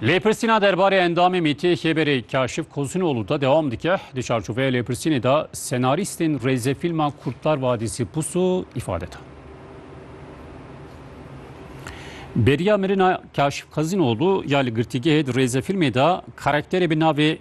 Lêpirsîna derbarê endamê Mîtiyê Xêberê Kaşif Kosunoglu da dewam dike. Di çarçoveya lêpirsînê da senarîstên rêzefîlma Kurtlar Vadisi Pusu îfade da. Beriya mirina Kaşif Kosunoglu ya li girtîgehê di rêzefîlmê da karakterê bi navê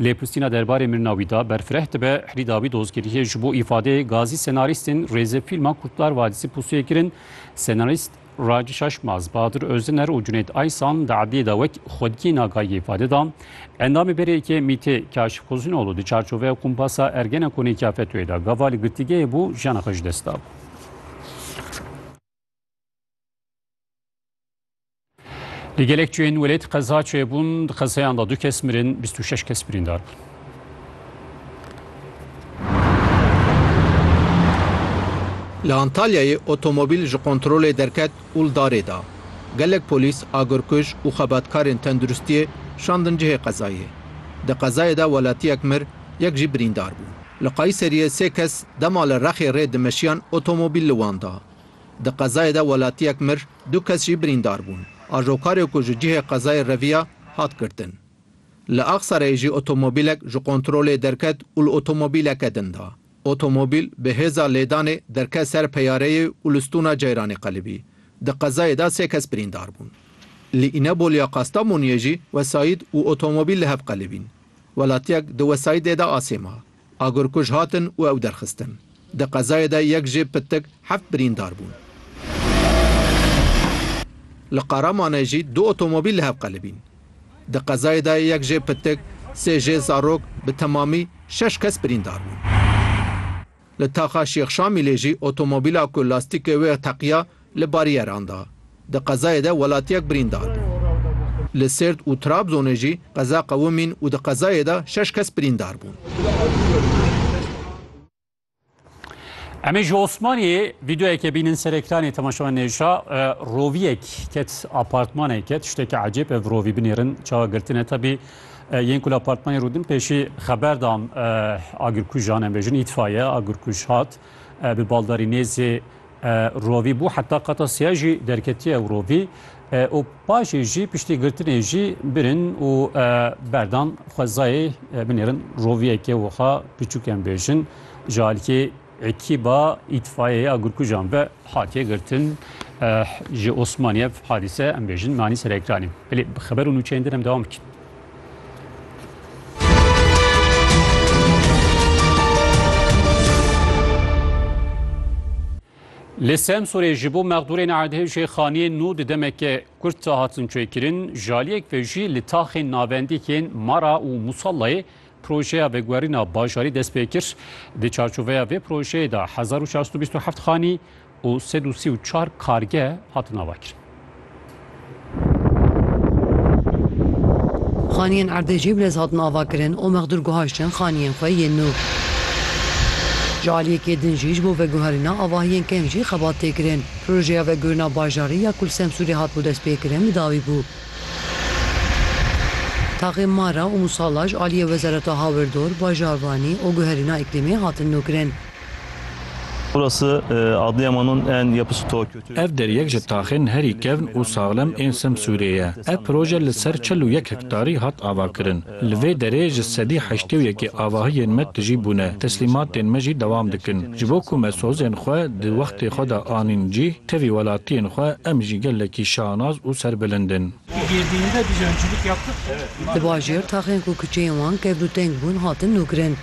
Lê pistîna derbarê mirina wî da berfireh dibe, herî dawî dozgeriyê ji bo îfadeyê gazî senarîstên rêzefîlma Kurtlar Vadisi pusûyê kirin, senarîst Raci Şaşmaz, Bahadir Ozdener û Cunêt Aysan di edliyê de wek xwediyên agahiyê îfade da. Endamê berêyekê MÎT'ê Kaşif Xuzînoğlu di çarçoveya kumpasa Ergenekonê ya FETÖ'yê de gava li girtîgehê bû jiyana xwe ji dest da. Li gelek cihên welêt qeza çêbûn di qezeyan da du kes mirin 26 kes birîndar bûn. Li Antalyayê otomobîl ji kontrolê derket û li darê da. Gelek polîs, agirkuj û xebatkarên tenduristiyê şandin cihê qezayê. Di qezayê de welatiyek mir, yek jî birîndar bû. Li Qayseriyê sê kes dema li Rexê rê dimeşiyan otomobîl li wan da. Di qezayê de welatiyek mir, du kes jî birîndar bûn. Ajokarê ku ji cihê qezayê reviya, hat girtin. Li Axisarayê jî otomobîlek ji kontrolê derket û li otomobîleke din da. Otomobîl bi hêza lêdanê derket ser peyareyê û li stûna Ceyranê qelibî. Di qezayê de sê kes birîndar bûn. Li Îneboliya Kastamoniyê jî wesayîd û otomobîl li hev qelibîn. Welatiyek di wesayîdê de asê ma. Agirkuj hatin û ew derxistin. Di qezayê de yek jê pitik heft birîndar bûn. Li Qaramanê jî du otomobîl li hev qelibîn. Di qezayê de yek jê pitik, sê jê zarok bi temamî şeş kes birîndar bûn. Li taxa Şêx Şamîlê jî otomobîla ku lastîkê wê teqiya, Li barîyeran de di qezayê de welatiyek birîndar bû. Li Sêrt û Trabzonê jî qeza qewimîn û di qezayê de şeş kes birîndar bûn. Em ê ji Osmaniyê vîdeoyekê bînin ser ekranê temaşewan nêşa. Roviyek ket apartmaneke tişteke ecêb ev rovî binêrin çawa girtine tebî yên ku li apartmanê rûdin pêşî xeber dam agirkujan em bêjin îtfaiye agirkuj hat bi baldarî nêzê Rovî bû heta qata sêya jî derketiye ew rovî û paşê jî piştî girtinê jî birin û berdan xwezayê binêrin roviyekê wiha piçûk em bêjin ji aliyê ekîba îtfayeya gurkujan ve hatiye girtin ji Osmaniye hadîse em bêjin nanî serekranî. Belê bi xeber û nûçeyên din em dewam bikin. Li Semsorê ji bo mexdûrên erdê jê xaniyên nû di demeke kurt de hatin çêkirin, ji aliyek ve jî li taxên navendî yên Mara û Musallayê projeya veguherîna bajarî dest pê kir. Di çarçoveya vê projeyê de hezar û çar sed û bîst û heft xanî û sed û sî û çar kargeh hatin avakirin. Xaniyên erdê jê bi lez hatin avakirin û mexdûr guhaştin xaniyên xwe yên nû. Ji aliyekê din jî ji bo veguherîna avahiyên kêm jî xebat tê kirin. Projeya veguhirina bajarî ya Kulsemsûrê hatibû destpêkirin bi dawî bû. Taxên Mara û Musalla ji aliyê Wezareta Hawirdor, Bajarvanî û Guherîna Îklîmê hatin nûkirin. Ev deryek ji taxên herî kevn û saxlem ên Semsûrê ye. Ev proje li ser çil û yek hektarî hat avakirin. Li vê derê ji sedî heştê û yekê avahiyên me tijî bûne, teslîmatên me jî dewam dikin. Ji bo ku me sozên xwe di wextê xwe de anîn cîh, tevî welatiyên xwe em jî gelekî şanaz û serbilind in. Di bajêr taxên ku kuçeyên wan kevlûteng bûn hatin nûkirin.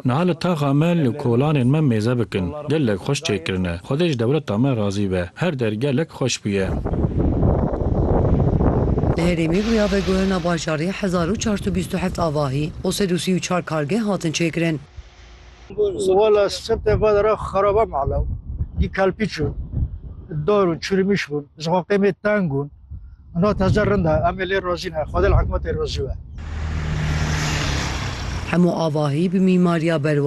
Niha li taxa me, li kolanên me mêze bikin. Gelek xweş çêkirine. Xwedê ji dewleta me razî be. Her der gelek xweş bûye. Li herêmê bûya veguherina bajarê hezar û çar sed û bîst û heft avahî û sed û sî û çar kargeh hatin çêkirin. Ana teze rind e, em ê lê razî ne, xwedê li hikûmetê razî be. Hemû avahî bi mîmariya berwazê.